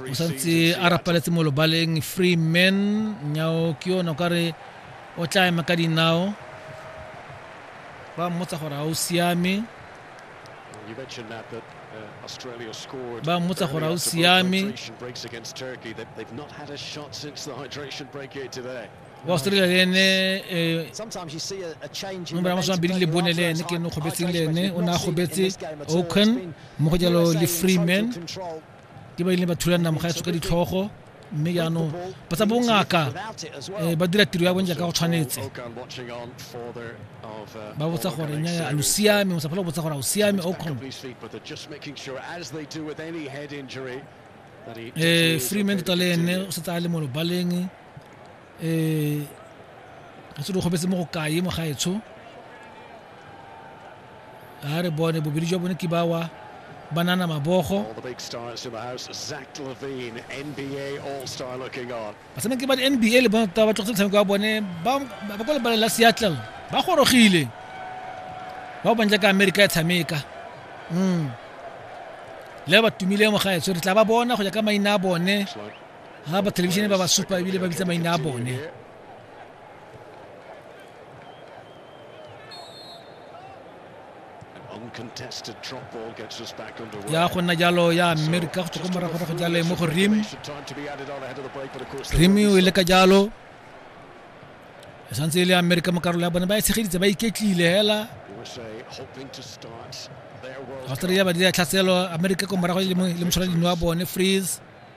o santse a rapaletse mo lobaleng free man nyao ke yone o ka re o tla ema ka dinao ba mmotsa gore ga o siame ba mmotsa gore ga o siame wa australia le ene mo bana masome mabedi le bone le ene ke ne kgobetseng le ene o ne a kgobetse oaken mo go jalo le freeman ke ba ile ba thula namoga ya tshoka ditlhogo mme jaanong ba tsa bongaka um ba dira tiro ya bone jaaka go tshwanetse ba botsa gore nyaya a lo siame o sa phela go botsa gore a o siame oaken um freeman tota le ene o setse a le mo lobaleng eh re se di kgobetse mo go kae mo gaetsho a re bone bobedi jwa bone ke bawa banana mabogo batshameki ba di-nba le bona tota ba tlogetse motshameko wa bone ba kwa lebale la seattle ba gorogile ba bantle ka amerika ya tshameka mm le ba tumile mo gaetsho re tla ba bona go ya ka maina a bone ga ba thelebišene ba ba supa ebile ba bitsa maina a bone ya go nna jalo ya amerika go tsoko morago go jalo mo go rim rim o ile ka jalo e santse e le amerika mo karolo ya bone ba e tshegeditse ba iketlile hela australia ba dira tlhaselo amerika ko morago le moshwara dino wa bone freeze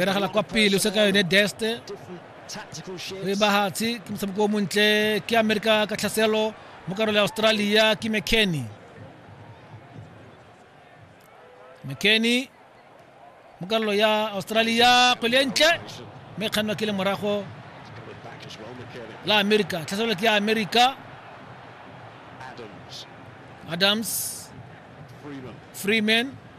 e ragela kwa pele o se ka yone deste o e bagatse ke motshameko o montle ke amerika ka tlhaselo mo karolo ya australia ke mckenny mckenny mo karolo ya australia kgwele e ntle mme kgannwa ke le morago la amerika tlhaselo ke ya amerika adams freeman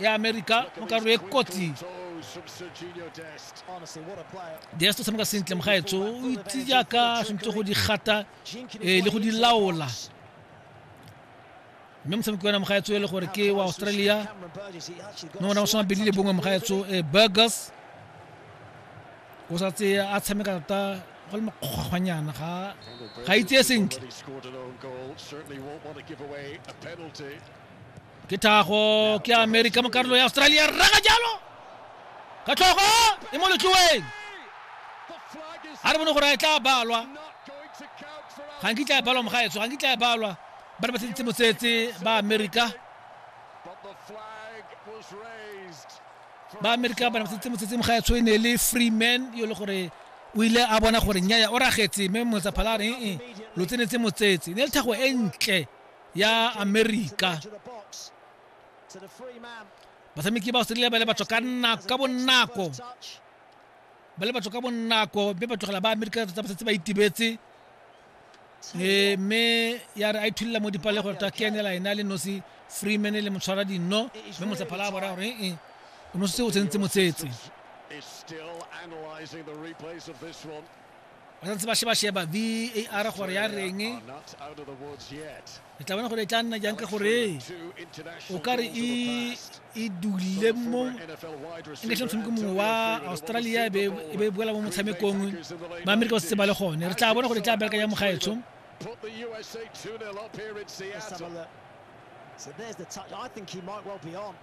ya america mo karo e kotsi dest o tshameka sentle mogaetso o itse jaaka tshwanetse go di gata eh, le go di laola mme motshameki wena mogaetso e le gore ke wa australia mme ona o soma bedi le bongwe mogaetso eh, burgers o sa tse a tshameka tota go le makgwanyana ga ga itse sentle ke thago ke america mo karolo ya australia raga jalo ka tlhogo e mo letloweng a re bone gore a e tla balwa ga nkitla e balwa mogaetso ga nkitla e balwa ba re ba tsheditse mosetse ba america ba america ba ne ba tsheditse mosetse mogaetso e ne le free man yo le gore o ile a bona gore nnyaya o ragetse mme motsaphalare ee lo tsenetse motsetse ne le thago e ntle ya amerika batshameki ba australia ba le batho ka nako ka bonako ba le batho ka bonako mme ba tlogela ba amerika tota ba setse ba itibetse e mme ya re a ithulila mo dipale gore ta kenela ena le nosi freeman le motshwara dinno mme motsephala a bona gore ee o nosetse o tsentse motsetse Is still analyzing the replays of this one. ba santse ba sheba-sheba var gore ya reng e tla bona gore e tla nna jang ka gore o ka re e, e dule mo e nketlhe motshameko mongwe wa australia e be e boela mo motshamekong ba amerika ba setse ba le gone re tla bona gore e tla bereka ya mogaetsho So there's the touch. I think he might well be on.